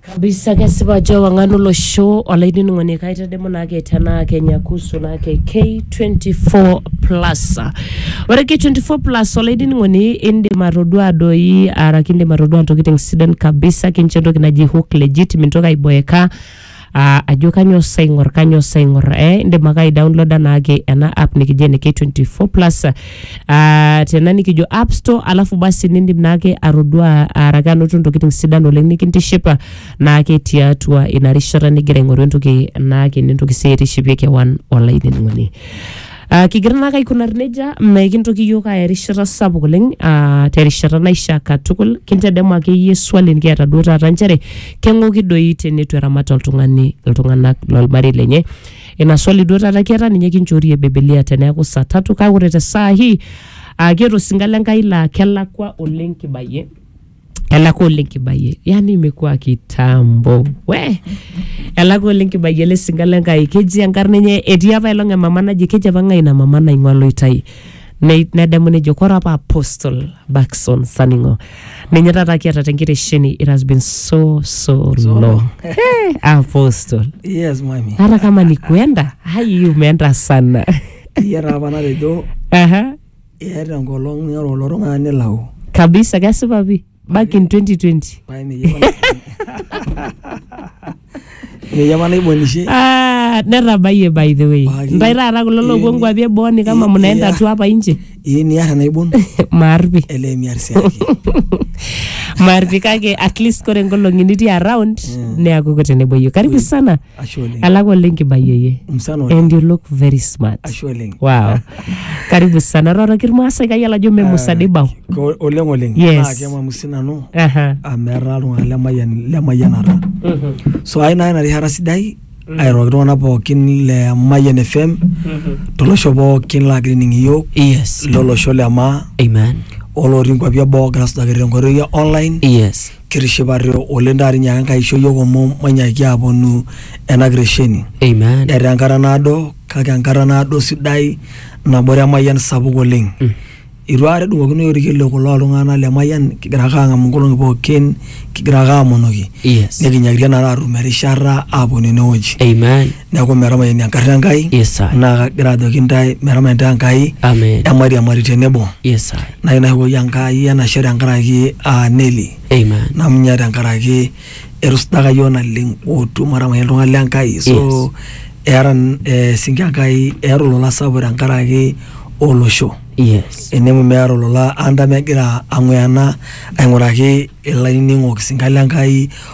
kabisa kesipa ajo ewang'an olosho olainining'oni kaitadamu naake tenaa kenya kuhusu naake k24 plus ore k24 plus olainining'oni indim atodua doi araki indim atodua ntokitin sidan kabisa kincho entoki naji hook legit mintoki aiboeka ah, ajo kanyoo sa aing'or kanyoo sa aing'or eh, indim ake aidownloada naake ena app nikijo ene K24 plus ah, tena nikijo app store alafu basi nindim naake atodua araki anoto ntokitin sidan oleng nikintishipa naake tiatua ina rishata nigira aing'oru entoki naake nintoki sii aitishipie kewan olainining'oni Uh, kigira naake aikunari nejia mekintoki iyiok aaya erishata sapuk oleng uh, terishata naishaa katukul kintedemu akeyie swali nikiata duo taata nchere keng'oki doi teneitu eramat oltung'ani iltung'anak lolmarei lenye ina swali duo taata kiata ninye kinchoorie bibilia teneeku saa tatu kake ore te saa hii uh, kiata osinka le Nkai laa kelakwa oleng kibayie elaka oleng kibayie yani imekuwa kitambo we elaka oleng kibayie ele sinka le nkai keji enkarna enye etii apa elong emama naji keji apa ng'ae ina mama naing'ua loitai Ne- nedamu nejo kore apa apostle Baxon Saning'o ninye taata kiata tenkitesheni it has been so so, So long long. hey, apostle Yes, mami. hata kama ni kuenda hai umeenda sana Iya apa natejo Aha. Eeta enkolong ning'oru kulo tung'ana nilau. kabisa kesipa pi back in 2020 Pae ninye apa- Ninye apa naibonishe. Ah, netabayie by the way Paki. ntae taata kulo loopuo Ini- nkuapi eboo ni kama ini- mnaenda iya. tu hapa nje Ii niar enaibon maarpi ele miar si ake. maarpi kake at least kore nkolong'i nitii around neaku kuteneboyu karibu sana Ashe oleng. Elak oleng kibayu eye. Msana oleng. And you look very smart. Ashe oleng. Wow. Karibu sana. Roroki irmaasai kayiolo ajo mme musa dei bao. Ko- Oleng oleng. Yes. Naa kemamu sii nanu Aha. amu etaa iltung'anak lemayian lemayianata. So ai naa ina rishata sidai airoroki iltung'anak pookin le Mayian FM tolosho pookin laagira aning iyiook Yes. lolosho le maa Amen. olotii nkuapi eboo ogira asujaki tenkoitoi e online Yes. kitishipate oleng taata inyaaka Enkai aisho iyiok omom mainyaaki aaponu ena kiresheni. Amen. Etaa enkata naado kake enkata naado sidai nabore emayian sapuk oleng. Eitu aikata edung'okinoyu olkiliku looltung'anak le mayian kigira ake aang'amu nkolong'i pookin kigira ake aamonoki Yes. nikinyakitia naa taata aatum erishata aaponu enewueji. Amen. neeku metamayiani enkarna Enkai Yes, sir. naa kagira ajoki intae metama intae Enkai Amen. emairiamari tenebo Yes, sir. nai naishopoki Enkai enashe tenkaraki aa Neli Amen. namunye tenkaraki etusujaka yiok naleng otu matamayiani iltung'anak le Enkai so Yes. eeta n- eh, sinki Enkai eeta olola sapuk tenkaraki olosho Yes. enemu meeta olola anta megira ang'uyana aing'uraki ilainining'ok sinka le Enkai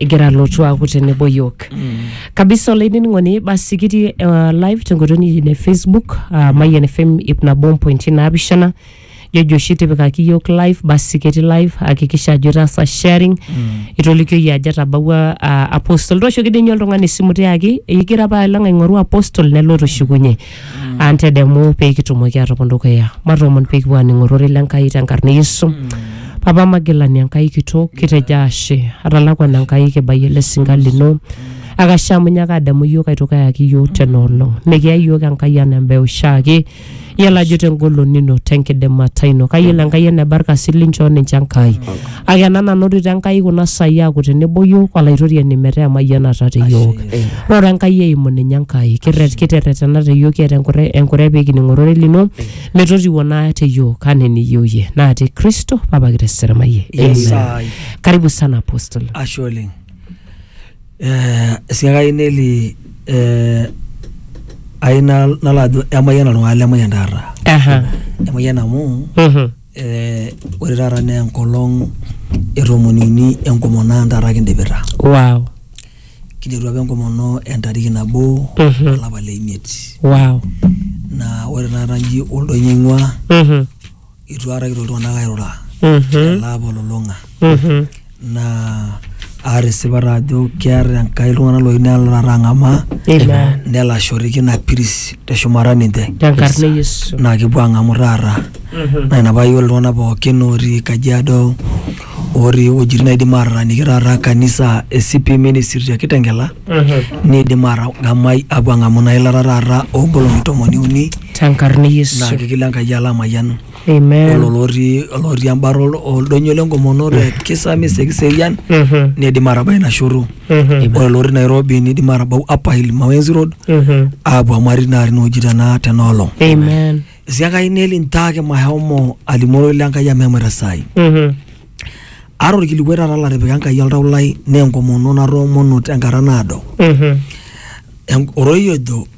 egira alotu aaku tenebo yiok kabisa olainining'oni basi kitii uh, live tenkoitoi nikitii ne facebook uh, mayian fm ip nabo mpointi naapishana jojo oshi tipikaki yiok live basi ketii live hakikisha ajo itaasa sharing itolikioyie ajo etabawua uh, apostol tooshoki dii ninye oltung'ani esimu tiaki igira apa alang aing'oru apostol nelo tushukunye antedemu pee kitumoki atopon dukuya matoomon pee kipuo aaning ororei le Nkai tenkarna e Yesu papa magilani Enkai kitok kitejo ashe atalakwana Enkai kibayie ele sinka lino akashe amu nyaaka adamu iyiook aitoki ayaki iyiook tena olong mikiya iyiook Enkai anaa embae oshiake iyiolo ajo tengolon ino tenkidimata ino kayiolo Enkai eneba irkasin linchoo ninche Enkai Kake ena nanotito Enkai kuna saai aaku tenebo iyiook olaitoriani metaa emayianata te iyiook. Roro Enkai eimu ninye Enkai. Kirret kiterretena te iyiook kiata enkure enkure pee kining ororei lino metotiwuo naa te iyiook anaa eniyieu iyie. Naa te Kristo Papa kiro eserimayie. Yes, Amen. ai. Karibu sana Apostle. ashe oleng Eh, esiai ai neli eh, ai nal- nalo ajo emayian oltung'ani lemayian taata Aha. emayian amu Mhm. Eh, ore taata naa enkolong e tomoni uni enkomono ang taata kidipita wow kiderua apa enkomono entariki nabo Mhm. olapa le imiet wow naa ore taata nji oldoinyio aing'ua Mhm. itu aikata kitoki iltung'anak airura Mhm. ele apa olulung'a Mhm. naa aata esipata ajo keeta enkai iltung'anak loyieu nelo taata ang'amaa Amen. nelo ashoriki ina piris teshumata ninche Tenkarna e Yesu. naa kepuo ang'amu taata naa ina paa yiolo iltung'anak pookin otii kajiado otii iwuejitin naidim ataaniki taata kanisa e CP ministry te kitengela Mhm. niidim atang'amai apuo ang'amu ina ilata taata oonkolong'i tomoni uni Tenkarna e Yesu. naa kigil Enkai alo amayian Amen. olo lotii olotii embata ol- oldonyo lenkomono te kisami sekiserian Mhm. nidim atabai ina shoto Mhm. ore lotii nairobi nidim atabau upper hill mawenzi road Mhm. aapuo amari naa tinewueji tena tenaolong Amen. esiakai neli ntaake mahomo alimu ororei lenkai amu emuita saai Mhm. ara orkilikuai taata latipika enkai oltau lai naa enkomono natoomono tenkata naado Mhm. En- ororei ojo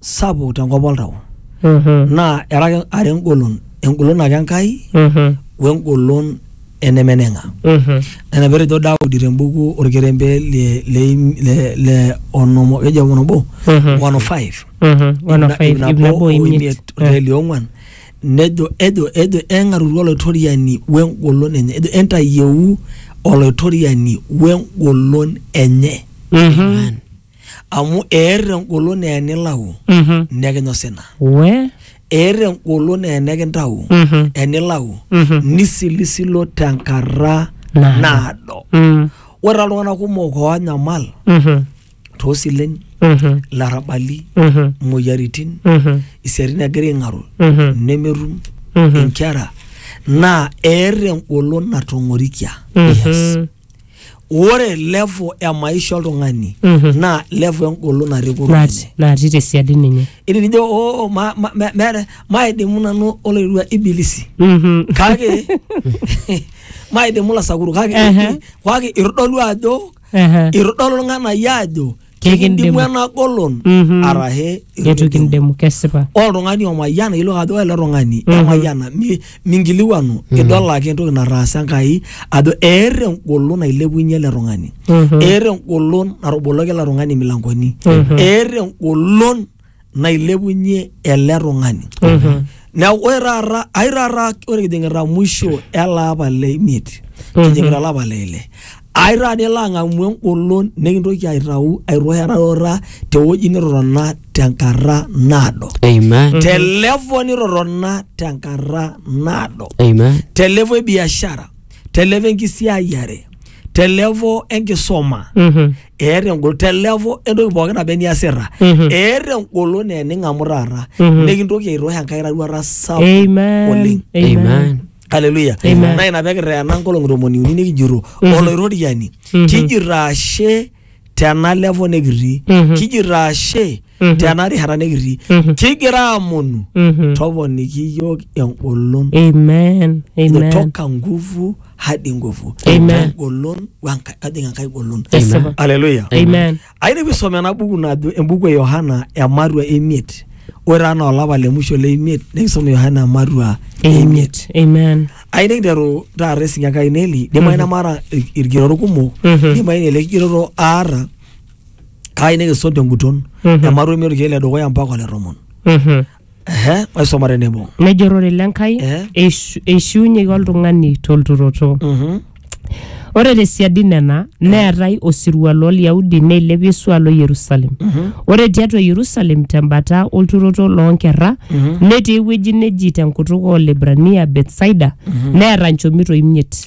sapuk tenkop oltau Mhm. naa era ake are engolon engolon ake enkai Mhm. wengolon enemeneng'a Mhm. nena petejo daudi tembuku orkerembe le, le, le, le onomo keji apa onobo Mhm. 105 Mhm. One of five, ip nabo o imiet. orkerembe liong'uan nejo ejo ejo eng'arutu olaitoriani wengolon enye ejo entayieu olaitoriani wengolon enye Mhm. amu eer engolon naa enilau Mhm. nekinya osina We. eer engolon naa enikintau Mhm. enilau Mhm. nisilisilo tenkata Naado. naado Mm. ore taa iltung'anak kumok oonyamal Mhm. toosilen Mhm. larrabali Mhm. imoyiaritin Mhm. isiatin egira aing'aru Mhm. nemetum Mhm. inkera naa eer engolon natong'orikia yes. Mhm. ore level e maisha oltung'ani Mhm. naa level engolon natii kurum Nat- enye natii tesiadi ninye itinijo oo ma- ma- me- meeta maidimu nanu oloirua ibilisi Mhm. kake maidimu lasakuru kake Ehe. kake itodolu ajo Ehe. itodolu irng'anayio ajo Kikindimu ena golon Mhm. arashe eitu kindimu kesipa ore oltung'ani omayiana ilo ajo ore ele tung'ani Mhm. emayiana mi- minkiliwanu idol ake entoki nataasa enkai ajo eeta engolon nailepunye ele tung'ani Mhm. eeta engolon natoboloki ele tung'ani imilankoni Mhm. eeta engolon nailepunye ele tung'ani neeku ore taata ai taata ore kijing'ita mwisho ele apa le imiet kijing'ita olapa le ile ai taata nilo ang'amu engolon nikintoki aitau airurarura tewueji nitotona tenkata naado Amen. te level nitotona tenkata naado Amen. te level e biashara te level enkisiayiare te level enkisoma Mhm. eeta engolon te level entoki pookin naba eniasita Mhm. eeta engolon naa ening'amu taata Mhm. nikintoki aitoosh enkai roruata sapuk Amen. oleng Amen. haleluya Amen. naa ina pekirreena nkolong'i tomoni uni nikijito Mhm. olaitoriani Mhm. kijito ashe tena level nikitii Mhm. kijito ashe Mhm. tena rishata nikitii Mhm. kigira amonu Mhm. toponiki iyiook engolon Amen. Amen. kutoka nguvu hadi nguvu Amen. golon wenka- kajing enkai golon Esipa. aleluya Amen. ayieu nisome ena buku najo embuku e yohana emarua emiet ore anaa olapa le musho le imiet nikisum yohana emarua emiet Amen. ayieu nikiteru taata esinya enkai neli dimayu nemaata il- ilkigerot kumok Mhm. dimayu ele kigeroto aata kaayieu nikisum tenguton Mhm. emarua emiet olkiek le dukuya mpaka ole tomon Mhm. Ehe, maisoma tenebo. nejo ororei le Nkai Eh. eishu- eishiunyeki oltung'ani tolturoto Mhm. ore tesiadi nena neetai osirua loolyahudi neilepi esual o yerusalem ore tiatua yerusalem tembata olturoto loonkerra netii ewueji neji tenkutuk oolibrania betsaida neeta nchomito imiet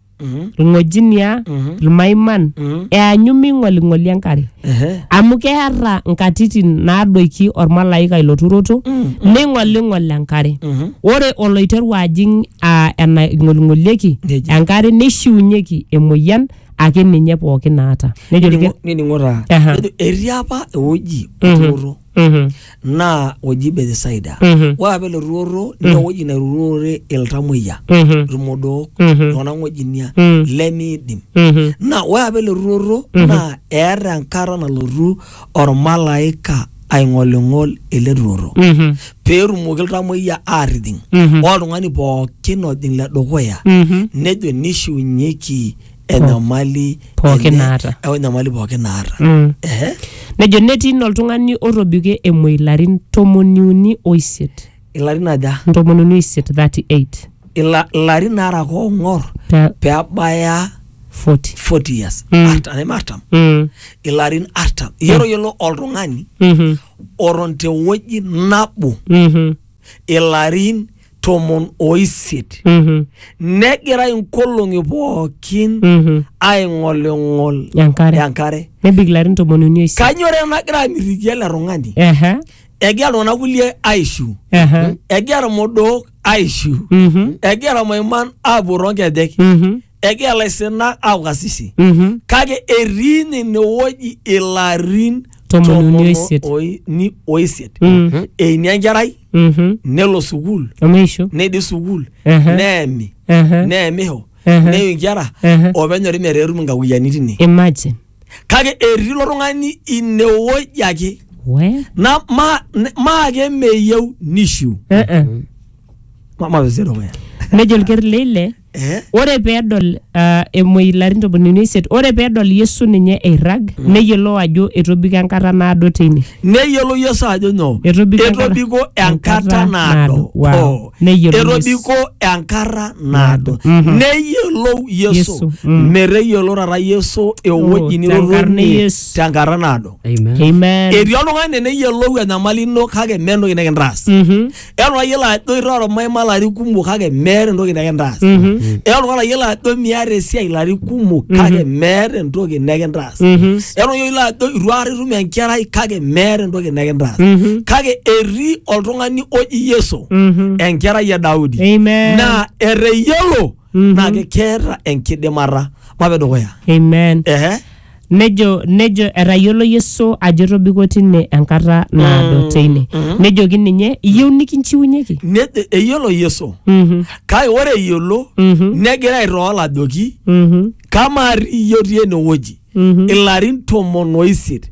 Mhm. ilng'ojinia, Mhm. ilmaiman, Mhm. eanyu meing'oling'oli enkare. Ehe. Amu keata nkatitin naadoiki olmalaika ilo turoto, Mm, neing'oling'ol enkare. Mhm. Ore oloiteru ajing aa enaing'oling'olieki Neji. enkare neishiunyeki emoyian ake ninye pooki naata. Nejo Nining'o- ilke- nining'o taa Aha. Nejo, etii apa ewueji Mhm. oturoto Mhm. naa oji Bethsaida. Mhm. Ore apa ele turoto naa ewueji nairurore iltamoyia, Mhm. ilmodook, Mhm. iltung'anak ng'ojinia Mm. lemiidim. Mhm. Naa ore apa ele turoto naa eeta enkata nalotu olmalaika aing'oling'ol ele turoto Mhm. peetumoki iltamoyia aatijing. Mhm. Ore oltung'ani pookin ojing le dukuya Mhm. nejo neishiunyeki enyamali Pookin enye, naata. eh, enyamali pookin naata Mm. Ehe. nejo netii ina oltung'ani otobikie emuoi ilarin tomoniuni oisiet ilarin aja ntomoniuni oisiet 38 Ila- ilarin naara koong'or Pe- peabaya 40 40 years Mm. Artam, neme artam Mm. ilarin artam iyiolo yiolo oltung'ani Mhm. oton tewueji nabo Mhm. ilarin tomon oisiet Mhm. negira inkolong'i pookin Mhm. aing'oling'ol Enkare. enkare Nebik ilarin tomoni uni oisiet. kanyore nagira amitiki ele tung'ani Ehe. egira iltung'anak kulie aishu Ehe. egira irmodook aishu Mhm. egira irmaiman aapuo toonkejek Mhm. egira laisinak aaku kasisi Mhm. kake etii ninye inewueji ilarin Tomon uni oisiet. tomon oi- ni- oisiet Mm. eini enkerai Mhm. nelo sukuul Omeisho. neidip sukuul Ehe. neemi Ehe. neemisho Ehe. neiu inkera Ehe. openyori metaa etum inkakuyiani tine Imagine. kake etii ilo tung'ani inewueji ake We. na ma- ne- maake meyieu nishiu Eh, eh. Ma- mapesero weya Nejo olker leile Eh? Ore pee edol uh, emuoi ilarin tomoniuni oisiet, ore pee edol Yesu ninye eirrag, mm. neyiolou ajo etobiko enkata naado teine. Neyiolou Yesu ajo nyoo? Etobiko, etobiko enkata naado. Wow. Etobiko enkata naado. Mm -hmm. Neyiolou Yesu. Yesu. Mm. Meteyiolo taata Yesu ewueji oh, nirotonie tenkata naado. Amen. Amen. Etii oltung'ani neyiolou enyamali ino kake mee entoki nikintaas. Mm -hmm. Eeta olayiolo ajo iroro maima larin kumok kake meeta entoki nekintaas. Mhm. Eeta olayiolo ajo miata esiai larin kumok kake meeta entoki nekintaas. Mhm. Eeta olayiolo ajo itu aikata itum enkerai kake meeta entoki nekintaas. Mhm. Kake etii oltung'ani oji Yesu Mhm. enkerai e Daudi. Amen. Naa eteyiolo Mhm. naa keeta enkidimata. Mape dukuya. Amen. Ehe. Nejo, nejo etayiolo Yesu ajo etobiko tine enkata naado teine. Nejoki ninye, iyieu nikinchiunyeki? Ne- e- eyiolo yesu Mhm, kake ore eyiolo mhm, negira aitool ajoki mhm, kamaa iyie otii enewueji mhm. ilarin tomon oisiet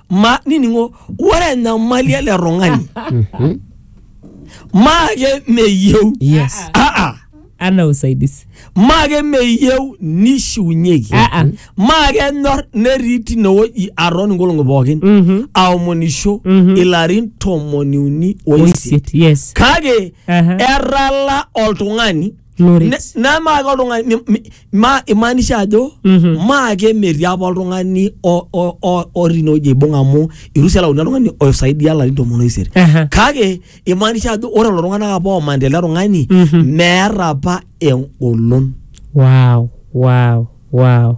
ma niningo ore enyamali ele tung'ani maake meyieu yes aa ana usaidizi maake meyieu nishiunyeki Aa. maake enyor netii tinewueji aton inkolong'i pookin Mhm. aomonisho Mhm. ilarin tomoniuni oisiet oisiet yes kake Aha. etala oltung'ani Loret. Ne- nemaake oltung'ani ni- mi- ma imaanisha ajo Mhm. maake metii apa oltung'ani o- o- o- otii inewueji aibung amu irusi elauni oltung'ani oisaidia larin tomon oisiet Aha. kake imaanisha ajo ore lelo tung'anak apa omanita ele tung'ani Mhm. meeta apa engolon Wow, wow, wow.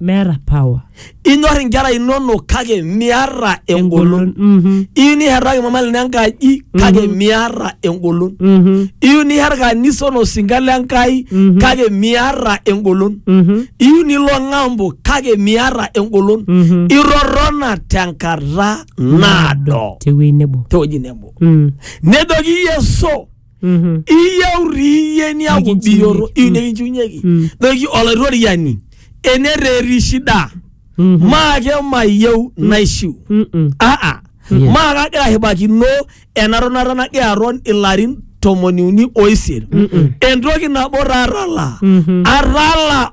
meeta power inyor inkera inonok kake miata engolon Mhm, iyieu niherraki mama lino enkaji kake miata engolon mhm, iyieu niher kanisa onosinka le Enkai Mhm. kake miata engolon mhm, iyieu nilo ng'ambo kake miata engolon mhm. irorrona tenkata naado tewuei nebo tewueji nebo Mm. nejoki Yesu Mhm. iyieu riiyie niaku Nikinchiunye. biyoto iu nikinchiunyeki Mm. toki olaitoriani enereri shida Mhm. maake mayieu naishiu Mm-mm. aa Yeah. maa kagira ashipakino ena tonata nagira aton ilarin tomoni uni oisiet entoki nabo tatala Mhm. atala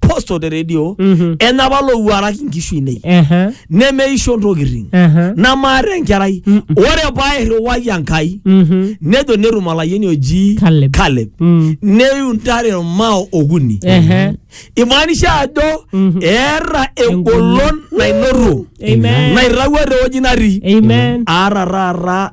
posto te redio Mhm. enapa lowuaraki nkishu inei Ehe. nemeisho ntokitin Ehe. namaata enkerai Mm. ore pairriwai enkai Mhm. nejo netum olayieni oji Caleb. Caleb. Mm. neiu ntare irmao okuni Ehe. imaanisha ajo Mhm. eeta engolon nainoto Amen. nairrawua tewueji natii Amen. aata taata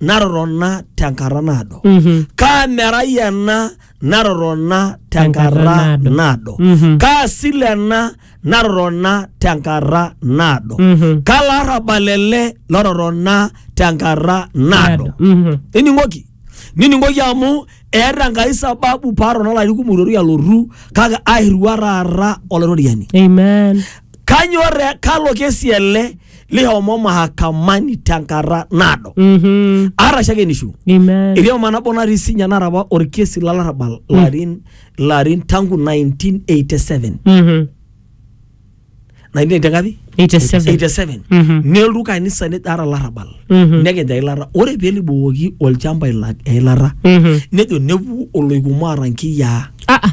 natotona tenkata naado Mhm. kaa merai ena natotona tenkata Tenkata naado. naado Mhm. kaa sile ena natotona tenkata naado Mhm. kaa larrabal ele lototona tenkata naado Mhm. nining'oki nining'oki amu eeta enkai sababu paatona olarin kumok itoru alotu kake airriwua taata olaitoriani Amen. kanyor kalo kesi ele lihomo mahakamani tenkata naado Mhm. arashake nishu Amen. etii oma nabo natii sinya nara apa orkesi lolarrabal larin larin tangu 1987 Mhm. 1980 ngapi 87. 87 Mhm. nelotu kanisa nejo ara larrabal Mhm. nekij eilata ore pelibukoki olchamba ila- eilata Mhm. nejo nepuku oloikumo aata nkiyiaa Ah, ah.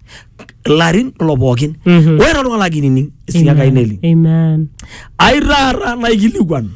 ilarin kulo pookin Mhm. ore toltung'ani lagira ainining esinya kai neli Amen. ai taata naikilikuan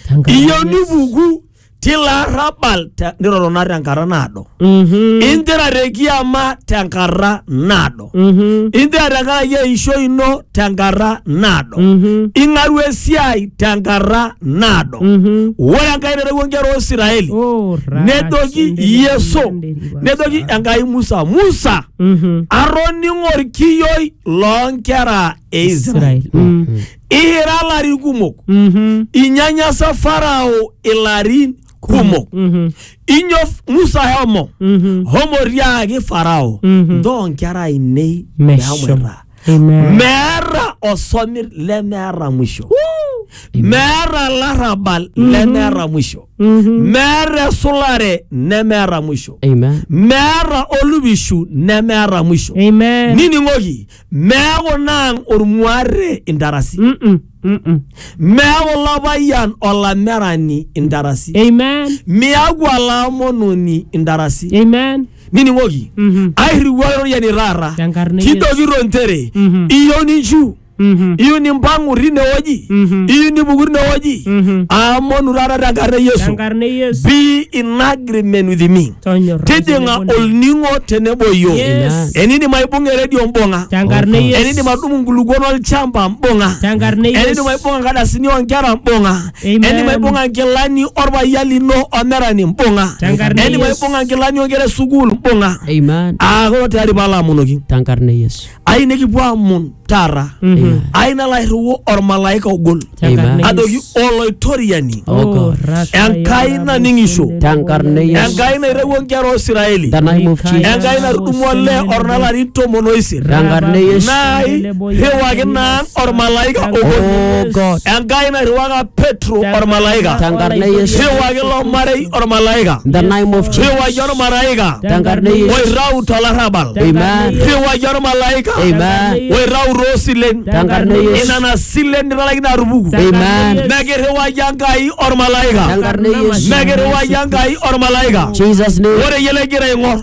Tenkaraki- iyieu nipuku tilo arrabal te- nirorona tenkata naado Mhm. injira te kiama tenkata naado Mhm. injira tenkaraki eisho ino tenkata naado Mhm. ing'aru esiai tenkata naado Mhm. ore enkai naitawuo nkera o Isiraeli Oh, nedoki Yesu. rakash- nejoki enkai musa musa Mhm. atoning'o orkiyioi loonkera e israel Israel. Mm. ihira ilarin kumok Mhm. inyanyasa farao ilarin kumok Mhm. inyo musa homo Mhm. homo tiaaki farao Mhm. ntoo nkera ainei Meshomo. mehomoita Amen. meeta osomir lemeeta mwisho meeta larrabal lemeeta mwisho meeta esulare nemeeta mwisho Amen. meeta olupishu nemeeta mwisho Amen. nining'oki meeku naang ormuarre intarasi Mm-mm. Mm-mm. meeku lapayian olamerani intarasi Amen. miaku olaamononi intarasi Amen. nining'oki Mhm. airriwuaa iroriani taata Tenkarna e Yesu. kidogiro nchere Mhm. iyieu ninchu Mhm. iyieu nimpang'u tinewueji Mhm. iyieu nipuku tinewueji Mhm. aamonu taata tenkarna e yesu Tenkarna e Yesu. be in agreement with me Tonyorra tijing'a tenebo na- olning'o tenebo iyio Yes. enidim aibung'a eredio mbung'a Tenkarna e Yesu. enidim adumu nkulukuon olchamba mbung'a Tenkarna e Yesu. enidim aibung'a nkadasini oonkera mbung'a Amen. eni maibung'a nkilani orpayian lino omerani mbung'a Tenkarna eni Yesu. maibung'a nkilani onkera e sukuul mbung'a Amen. aa kolo tayari paalo amonoki Tenkarna Yesu. ai nikipuo amon taata Amen. ai nalo airriu ormalaika ogol Tenkarna Amen. adoki Yesu. oloitoriani Oh God. Raka enkai yara naning'isho busende Tenkarna yara. Yesu. enkai nairewua nkera oisiraeli The name of Jesus. enkai natudumua olee ornalarin tomon oisiet Tenkarna Yesu. nai Irriwaki naan ormalaika Oh obo. God. Enkai nairriwaka Petro ormalaika. Tenkarna e Yesu. Irriwaki ilo marei ormalaika. In the name of Jesus. Irriwaki ormalaika Tenkarna e Yesu. oirrau tolarrabal. Amen. Irriwaki ormalaika Amen. oirrau toosilen. Tenkarna e Yesu. Inana silen nitalaikine atupuku. Amen. Mekirriwaki Enkai ormalaika. Tenkarna e Yesu. Mekirriwaki Enkai ormalaika. Jesus name. Ore iyie legira aing'or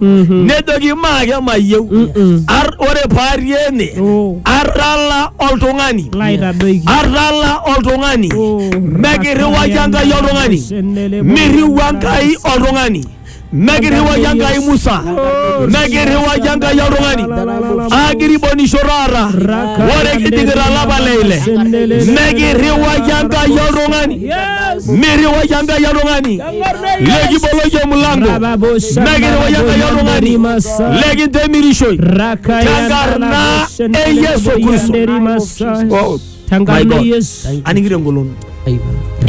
Mhm. nejoki maake mayieu Mm-mm. Ar- ore paari ene Oh. arrala oltung'ani Laitadoiki. arrala oltung'ani Oh. mekirriwaki enkai oltung'ani Senelebo. mirriwa enkai oltung'ani mekirriwaki enkai musa mekirriwaki enkai oltung'ani akiribonisho taata ore kidikita lapa leile mekirriwaki enkai oltung'ani Yes. mirriwaki enkai oltung'ani lekiboloki omulango nekiri woyang'ayi oltung'ani lekintemirishoi tenkarna e yesu kristo Oh, my tenkarna God. yesu aning'ito engolon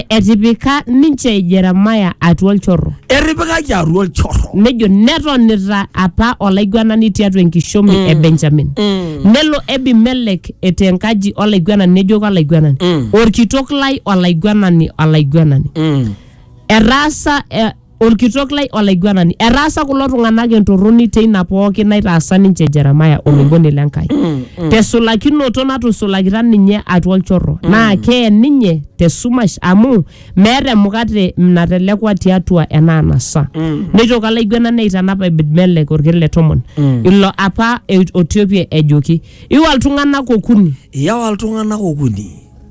etipika ninche jeremaya atua olchorro etipikaki atua olchorro nejo netonita apa olaiguanani tiatua enkishomi e benjamin nelo ebimelek etaa enkaji olaiguanani nejoki olaiguanani orkitok lai olaiguanani olaiguanani Etaasa eh, olkitok lai olaiguanani, etaasa kulo tung'anak entorroni teina pooki naitaasa ninche Jeremiah oloiboni le Nkai. Tesulakinoto natusulakita ninye atua olchorro, naa kee ninye tesumash amu meeta emukate natelekua tiatua ena anasa. Neitoki olaiguanani aitanap Ebed-melek olker le tomon, ilo apa e- otiopie ejoki, iwa iltung'anak okuni Iyawa iltung'anak okuni.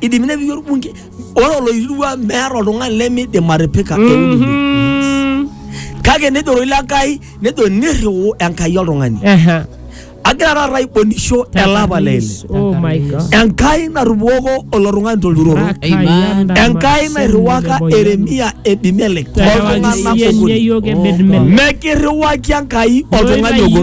idimi nepiki orbunke ore oloirua meeta oltung'ani lemidim atipika eululu Mhm. kake nejo roi lenkai nejo nirriu enkai oltung'ani Aha. agira taata aibonisho elapa lele Oh my God. enkai natupoko olo tung'ani tolturoro Amen. enkai nairriwaka eremia ebimelek oltung'anak okuni Mekirriwaki enkai oltung'ani ogo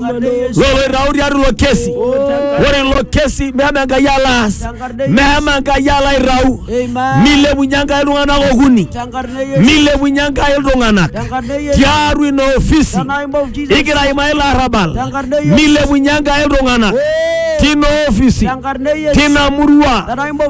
loloitau tiatua ilo kesi ore ilo kesi mehema enkai alo aas mehema enkai alo aitau milepunye enkai iltung'anak okuni milepunye enkai iltung'anak tiatua ina ofisi igira aimaa ilo arrabal milepunye enkai iltung'anak tina ofisi tina murua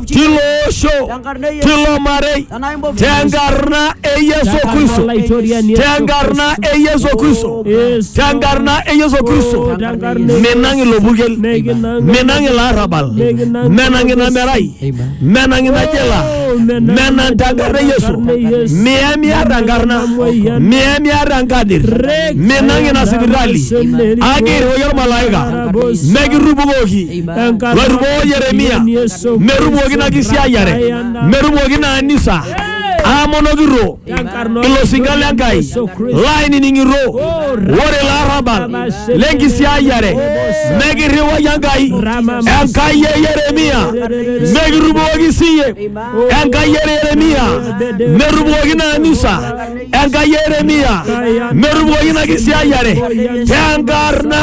tilo osho tilo marei Tanaa imbovu. tenkarna e yesu kristo Olaitoriani Yesu tenkarna Kristo. e yesu kristo Yesu. tenkarna e yesu kristo Oh, tenkarna e menang Yesu. ilo purkel Mekinang menang ilo arrabal Mekinang menang ina Yesu. merai menang ina jela Oh, menang menang tenkarna e yesu tenkarna e Yesu. miamiata enkarna Emoyian. miamiata enkadir Rek. menang ina sipitali Amen. akirriwaki olmalaika Arabos. mekirrupukoki Enkarna loirriwoo yeremia Yesu merrupukoki ina Kristo. kisiayiare Brian metumoki ina anisa aamonokito ilo sinka le Nkai laaining'ito ore ilo arrabal le nkisiayiare mekirriwaki Enkai Enkai e Yeremia mekirriwaki siiyie Enkai e Yeremia merriwaki ina anisa Enkai e Yeremia merriwaki ina kisiayiare tenkarna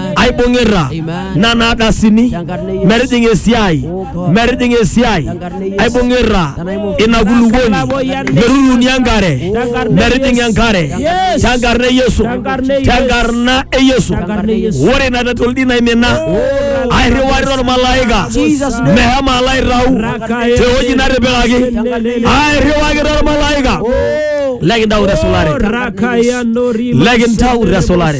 aibung'ita nana ardasini metijing'a esiai metijing'a esiai aibung'ita ina kulukuoni meruruni enkare metijing'a enkare tenkarna e yesu tenkarna e yesu ore ina tatoldi naimina airriwarita ormalaika mehema alo aitau tewueji natipikaki airriwakita ormalaika lekintau tesulare lekintau tesulare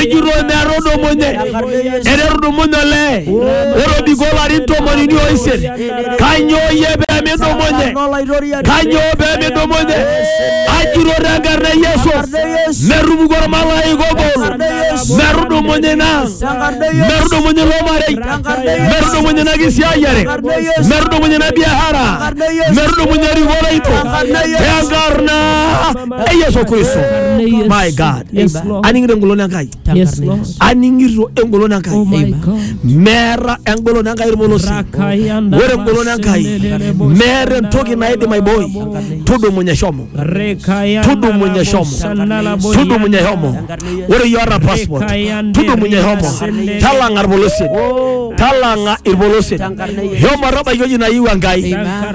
ejurro emearrodomonye ererudumunye olee ore obiko larin tomonini oisiet kanyoo iye pemidumunye kanyoo pemidumunye ajurro tenkarna e yesu merrupuku ormalaika obol merrudumunye ina merrudumunye ilo marei merrudumunye ina kisiayiare merrudumunye ina biashara merrudumunye erikore ito tenkarna e yesu kristo my god Yes, Eiba. Lord. aning'ito engolon enkai Yes, Lord. aning'ito engolon Oh enkai my Eiba. God. meeta engolon enkai irmolosi Rakayanda ore engolon enkai basendelele boshanda meeta entoki naidim aiboi basendelele tudumunye shomo Rekayanda tudumunye shomo boshanda la boyanda. tudumunye shomo ore iyoota passport Rekayanda tudumunye shomo basendelele. talang'a irpolosien Oh. talang'a irpolosien shomo tabaiki ewueji nayieu enkai Amen.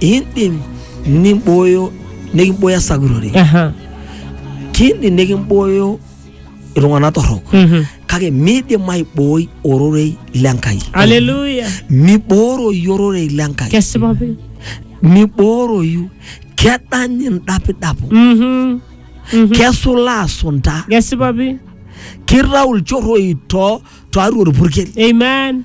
indim nimbooyo nikimbooyo esakutore Aha. kiindim nikimbooyo iltung'anak torrok Mhm. kake miidim aibooi ororei lenkai Hallelujah. mibooroyu ororei lenkai Kesipa pi. mibooroyu kedany indapidapo Mhm. Mhm. kesulaa sunta Kesipa pi. kitau ilchorroi too tiatua orpurkel Amen.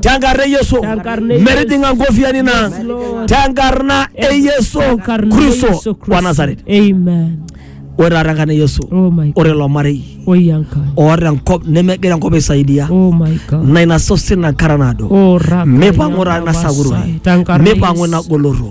tenkarna e Yesu Tenkarna e Yesu. metijing'a nkofiani na Yes, Lord. tenkarna e Yesu Tenkarna e Kristo Yesu wa Kristo. Nazareth Amen. ore taata enkarna e Yesu Oh my God. ore ilo marei Oh Yanka. oota enkop nemegira enkop aisaidia Oh my God. na ina sosen enkara naado Oh Raka. mipang'u taata ina Yanka sakuroi Masai. Tenkarna mipang'u Yesu. ina goloto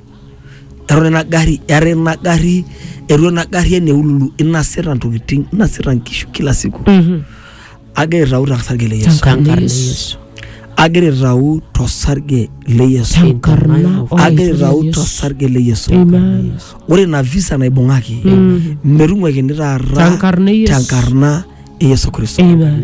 eton ina gari eton ina gari eton ina gari ene ululu inasita ntokitin inasita nkishu kila siku agira aitau tosarge le Yesu Tenkarna e Yesu. agira aitau tosarge le Yesu Tenkarna o agira Yesu. aitau tosarge le Yesu Amen. ore ina visa naibung'aki metung'uakini taata Tenkarna e Yesu. tenkarna e Yesu Kristo Amen.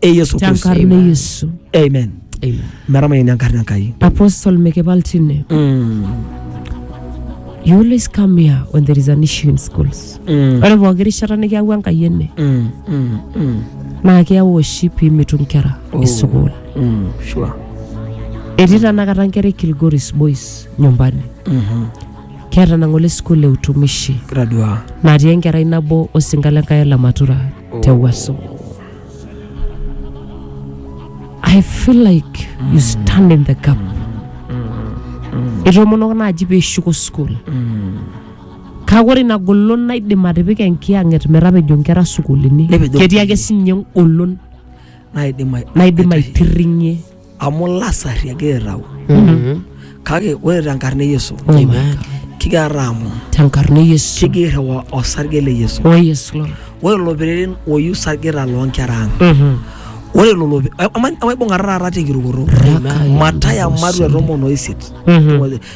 e yesu kristo tenkarna yesu amen Amen. meramayeni enkarna enkai apostle mikibaltine Mm, you always come here when there is an issue in schools mm, ore pooki rishata nikiyaua enkai ene mm, mm, mm, naa keyau oshi piimitu nkera Oh. esukuul mm, sure. etii tanakata nkera e kilgoris boys nyumbani Mhm. keeta nang'ole sukuul e utumishi Gradua. natii enkerai nabo osinka le nkai le matura te waso I feel like you stand in the gap. Etomonok naaji pee ishuko school. Kake ore ina golon naidim atipika enkiyang'et metapejo nkera sukuulini. Nepejo. Ketii ake sinye engolon naidim ai- naidim aitirring'ie amu lasari egira aitau Mhm. kake ore tenkarna e yesu Amen. kigira aamon Tenkarna e Yesu. kigira irriwa osarge le yesu Oh yes Lord. ore lelo pereren oyiu sargeta loonkera ang Mhm. ore lelo pe- ama- amaibung'ata taata tenkirukoto Raka ya mataya Yesu. matua tomon oisiet Mhm.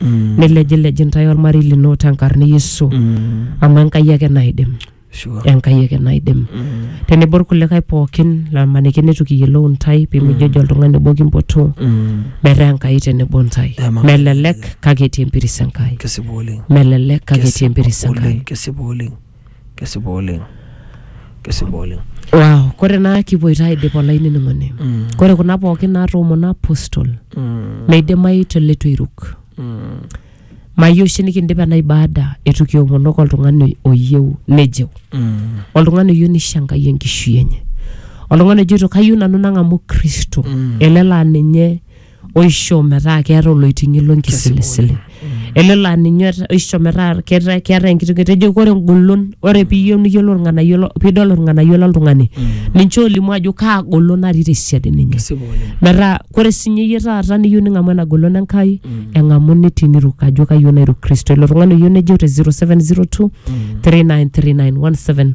Mm. nilejilej intae olmarei lino tenkarna e Yesu Mm. amu Enkai ake naidim Sure. Enkai ake naidim Mm. tenebo irkulikae pookin lamaniki neitu kiyiolou intae pimijojo oltung'ani obo kimpotu Mm. metaa Enkai tenebo intae Amen. melelek kake etii empiris Enkai Kesipa oleng. melelek kake etii empiris Enkai Oleng. Kesipa oleng. kesipa oleng kesipa oleng wow. kore naa kipuoito aidip olainining'oni Mm. kore kuna pookin naatoomona apostol Mm, meidimayu te leitu eiruk mm, mayieu oshi nikindip ena ibada eitu kiomonoko oltung'ani oyieu nejeu mm, oltung'ani oyieu nisho enkai enkishui enye oltung'ani ojoito kayieu nanu nang'amu kristo Mm. ele laa ninye oisho metaa keeta oloiting'i lonkisilisili ele laa ninye ota- oisho metaa keeta keeta enkitoki etejo ore engolon ore piiyieu niyiolou irng'anayio lo- piidol irng'anayio loltung'ani ninche olimu ajo kaa golon natii tesiadi ninye Kesipa oleng. metaa kore sinye iyie taata niyieu ning'amu ena golon enkai eng'amu nitii niruk ajo kayieu nairuk kristo ilo tung'ani oyieu nejeu te 0702 393917